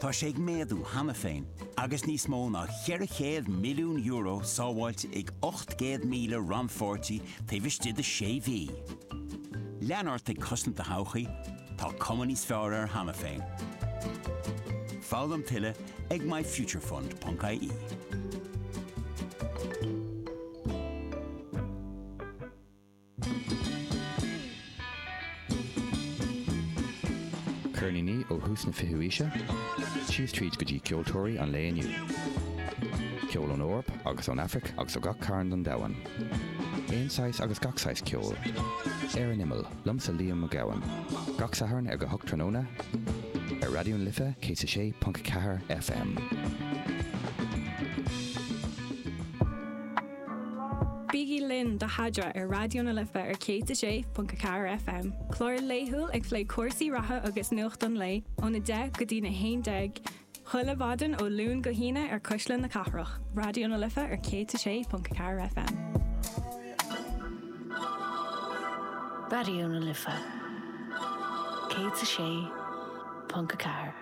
Tá sé ag méadú cheana féin agus níos mó ná €400 milliún sábháilte ag 800,000 rannpháirtí taobh istigh de sé mhí. Lean ort ag cosaint do thodhchaí, tá cuma níos fearr air cheana féin. Foghlaim tuilleadh ag myfuturefund.ie. Ceirníní ó thús na fichiú aoise síos tríd go dtí ceoltóirí an lae inniu. Ceol ón Eoraip agus ón Aifric agus ó gach cearn den domhan. Aon saghas agus gach saghas ceoil. Ar an Imeall, liomsa Liam Mac Gabhann. Gach Satharn ag a hocht tráthnóna ar Raidió na Life 106.4 FM. Bígí linn do Sheadra ar Raidió na Life ar 106.4 FM, clár laethúil ag plé cúrsaí reatha agus nuacht an lae óna 10 go dtí'n 11 chuile mhaidin ó Luan go hAoine ar Cuisle na Cathrach, Raidió na Life ar 106.4 FM. Raidió na Life 106.4.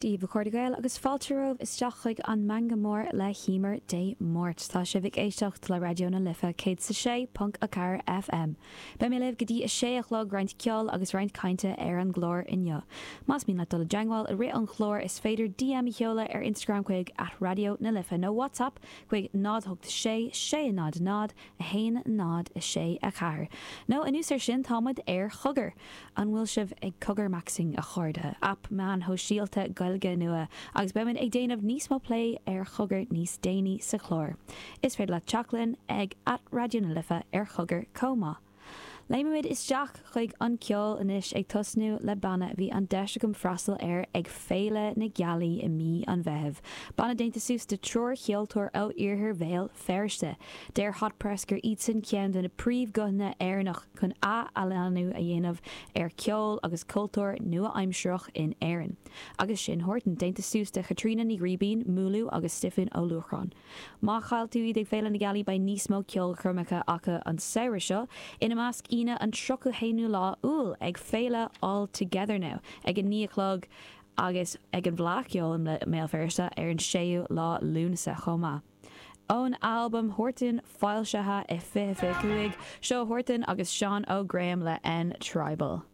Daoibh, a chairde Gael, agus fáilte romhaibh isteach chuig an Meangadh Mór le hÉimear Dé Máirt. Tá sibh ag éisteacht le Raidió na Life 106.4 FM. Beidh mé libh go dtí a sé a chlog, roinnt ceoil agus roinnt cainte ar an gclár inniu. Más mian leat dul i dteangmháil i rith an chláir is féidir DM a sheoladh ar Instagram chuig at Raidió na Life nó WhatsApp chuig 086 600 1, 0, 6, 4, nó anuas air sin, tá muid ar Chogar! An bhfuil sibh ag cogarmaxing, a chairde? Aip meáin shóisialta Gaeilge nua agus beidh muid ag déanamh níos mó plé ar Chogar níos déanaí sa chlár. Is féidir leat teacht linn ag at Raidió na Life ar Chogar chomh maith. Léimfimid isteach chuig an ceol anois, ag tosnú le banna a bhí an deis agam freastal air ag Féile na Gealaí i mí an Mheithimh, banna déanta suas de triúr cheoltóir ó iarthar Bhéal Feirste. Deir Hot Press gur iadsan ceann de na príomhghuthanna Éireannach chun ath-athshlánú a dhéanamh ar cheol agus cultúr nua-aimsireach in Éirinn. Agus sin Huartan déanta suas de Chaitríona Ní Ghribín, Múlú, agus Stiofán Ó Luachráin. Má chaill tú iad ag Féile na Gealaí beidh níos mó ceolchoirmeacha acu an samhradh seo, ina measc Aoine an 31ú lá Iúil ag Féile All Together Now ag 9 a chlog agus ag an bhFleadh Cheoil i mBéal Feirste ar an 6ú lá Lúnasa chomh maith. Ón albam Huartan, foilsithe i 2025, seo Huartan agus Seán Ó Graeme le N Tribal.